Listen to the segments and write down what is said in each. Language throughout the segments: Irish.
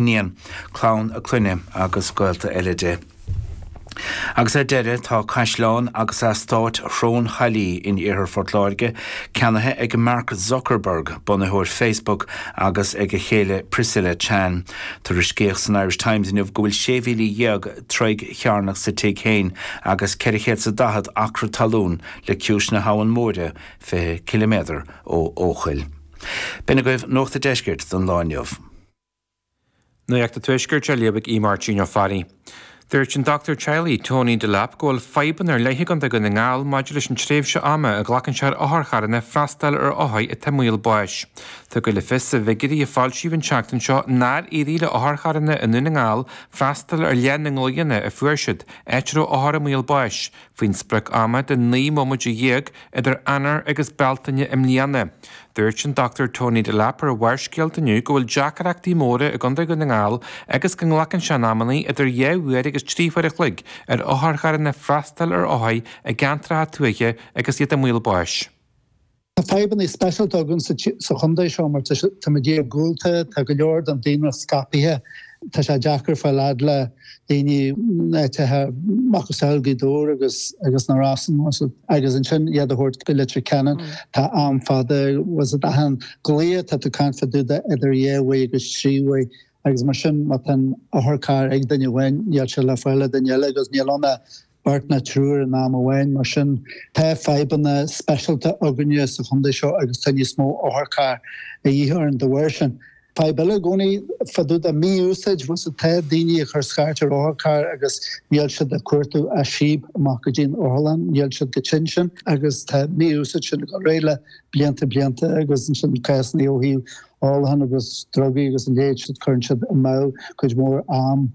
Iníon, clann a clainne agus gaolta eile di. Agus ar deireadh tá caisleán agus eastáit Shrón Chaillí in Iarthar Phort Láirge ceannaithe ag Mark Zuckerberg, bunaitheoir Facebook, agus ag a chéile Priscilla Chan. Tuairiscíodh san Irish Times inniu go bhfuil 16,000 troigh chearnach sa tigh féin agus 400 is 40 acra talún le ciumhais na hAbhann Móire, 20 ciliméadar ó Eochaill. B'in agaibh Nuacht a' Deiscirt don lá inniu. Nuacht a' Tuaiscirt á léamh ag Aodh Máirtín Ó Fearraigh. Dúirt an dochtúir teaghlaigh, Tony Delap, go bhfuil fadhbanna ar leith againn i nDún na nGall maidir leis an tréimhse ama a ghlacann sé ar otharcharranna freastal ar othair atá i mbaol báis. Tugadh le fios i bhfigiuirí a foilsíodh an tseachtain seo nár éirigh le otharcharranna i nDún na nGall freastal ar leath na nglaoanna a fuair siad, áit a raibh othair i mbaol báis. Faoin sprioc ama de naoi mbomaite dhéag idir Eanáir agus Bealtaine i mbliana, dúirt an Dr Tony Delap ar Barrscéalta inniu go bhfuil deacaireachtaí móra i gContae Dhún na nGall agus go nglacann sé in amannaí idir dhá uair agus trí huair a chloig ar otharcharranna freastal ar othair i gceantracha tuaithe agus iad i mbaol báis. Tá fadhbanna speisialta againn sa chontae seo mar tá muid iargúlta, tá go leor den daonra scaipthe, tá sé deacair fáil fhad le daoine in áiteacha macasamhail Gaoth Dobhair agus na Rosann agus ansin iad a thabhairt go Leitir Ceanainn. Tá am fada achan glao atá tú ag caint fá dtaobh de idir dhá uair agus trí uair agus mar sin má tá an t-otharcharr ag duine amháin níl sé le fáil ag duine eile agus níl ann ach beart ná triúr in am amháin. Mar sin, tá fadhbanna speisialta againne sa chontae seo agus tá níos mó otharcharr de dhíth orainn de bharr sin. Fadhb eile i gcónaí fá dtaobh de mí-úsáid más é, tá daoine ag cur scairt ar otharcharr agus níl siad ag cuartú ach síob isteach go dtí an otharlann, níl siad chomh tinn sin agus tá an mhí-úsáid sin ag gabháil ar aghaidh le blianta blianta agus ansin cásanna ó thaobh ólacháin agus drugaí agus a leithéid sin, cuireann siad amú cuid mhór am.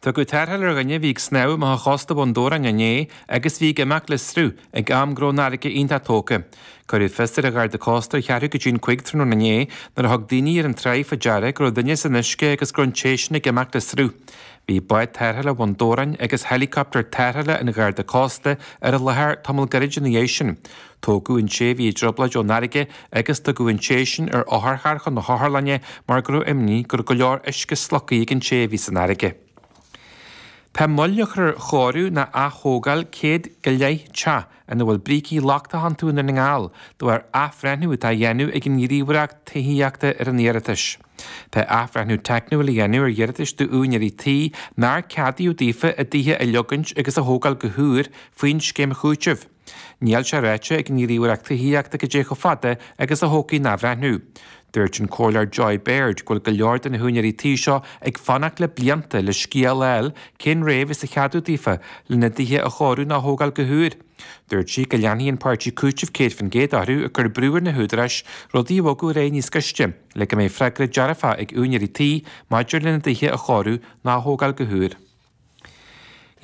Tugadh tarrtháil ar dhuine a bhí ag snámh amach ó chósta Bhun Dobhráin inné agus a bhí ag imeacht le sruth ag am go raibh an fharraige iontach tógtha. Cuireadh fios ar an Gharda Cósta ar cheathrú go dtí an cúig tráthnóna inné nuair a thug daoine ar an tráigh faoi deara go raibh duine san uisce agus go raibh an té sin ag imeacht le sruth. Bhí bád tarrthála Bhun Dobhráin agus helicopter tarrthála an Gharda Cósta ar an láthair tamall gairid ina dhiaidh sin. Tógadh an té a bhí i dtrioblóid ón fharraige agus tugadh an té sin ar otharcharr chun na hotharlainne mar go raibh imní go raibh go leor uisce slogtha ag an té a bhí san fharraige. Tá moill á cur ar chóiriú ná atógáil céad go leith teach ina bhfuil brící lochtacha iontu i nDún na nGall de bharr athbhreithniú atá á dhéanamh ag an ngníomhaireacht tithíochta ar a n-iarratais. Tá athbhreithniú teicniúil á dhéanamh ar iarratais d'úinéirí tí nár ceadaíodh daofa a dtithe a leagaint agus a thógáil go húr faoin scéim chúitimh. Níl sé ráite ag an nGníomhaireacht Tithíochta cad é chomh fada agus a thógfaidh an t-athbhreithniú. Dúirt an Comhairleoir Joy Baird go bhfuil go leor de na húinéirí tí seo ag fanacht le blianta le scéala a fháil cén dream acu a cheadófar lena dtithe a chóiriú ná a thógáil go húr. Dúirt sí go leanfaidh an Páirtí Cúitimh 100% orthu ag cur brú ar na húdaráis rudaí a bhogadh ar aghaidh níos gaiste le go mbeidh freagra dearfach ag úinéirí tí maidir lena dtithe a chóiriú ná a thógáil go húr.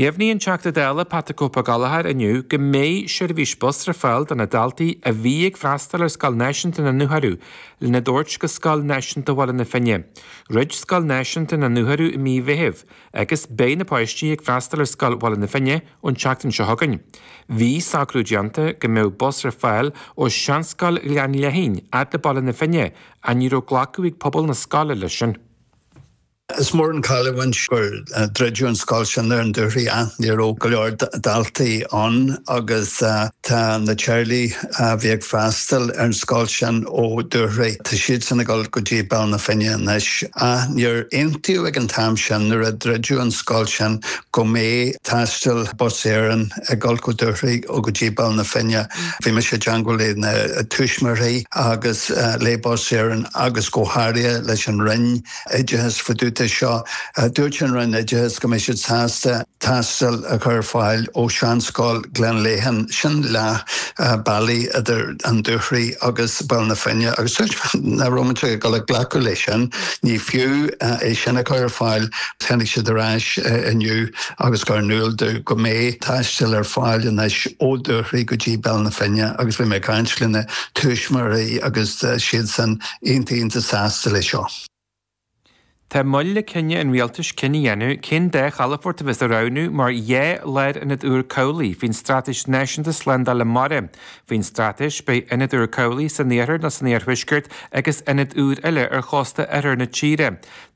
Dheimhnigh an Teachta Dála Pat 'the Cope' Ó Gallchóir inniu go mbeidh seirbhís bus ar fáil do na daltaí a bhí ag freastal ar Scoil Náisiúnta na Dúchoraidh lena dtabhairt go Scoil Náisiúnta Bhaile na Finne. Dhruid Scoil Náisiúnta na Dúchoraidh i mí Mheithimh agus beidh na páistí ag freastal ar Scoil Bhaile na Finne ón tseachtain seo chugainn. Bhí socrú déanta go mbeadh bus ar fáil ó Sheanscoil Ghleann Léithín fhad le Baile na Finne ach ní raibh glacadh ag pobal na scoile leis sin. Is mór an chailliúint gur druideadh an scoil sin ar an Dúchoraidh ach ní raibh go leor daltaí ann agus tá na teaghlaigh a bhí ag freastal ar an scoil sin ó Dúchoraidh, tá siadsan ag dul go dtí Baile na Finne anois. Ach níor aontaíodh ag an t-am sin nuair a druideadh an scoil sin go mbeadh taisteal Bus Éireann ag dul ó Dúchoraidh go dtí Baile na Finne. Bhí mise i dteagmháil le na tuismitheoirí agus le Bus Éireann agus go háirithe leis an Roinn, Oideachais fá dtaobh de seo. Dúirt an Roinn Oideachais go mbeadh siad sásta taisteal a chur ar fáil ó Sheanscoil Ghleann Léithín, sin leath bealaigh idir an Dúchoraidh agus Baile na Finne, agus dúirt mé nach raibh muid ag gabháil a ghlacadh leis sin. Ní fiú é sin a chur ar fáil, tháinig siad ar ais inniu agus chuir in iúl dúinn go mbeidh taisteal ar fáil anois ó Dúchoraidh go dtí Baile na Finne agus bhí mé ag caint le na tuismitheoirí agus siadsan iontach sásta le seo. Tá moill le cinneadh an Rialtais cinneadh a dhéanamh cén dá chalafort a bheas á roghnú mar dhá lárionad úr cabhlaigh faoin Straitéis Náisiúnta Slándála Mara. Faoin Straitéis, beidh ionad úr cabhlaigh san iarthar nó san iarthuaisceart agus ionad úr eile ar chósta oirthear na tíre.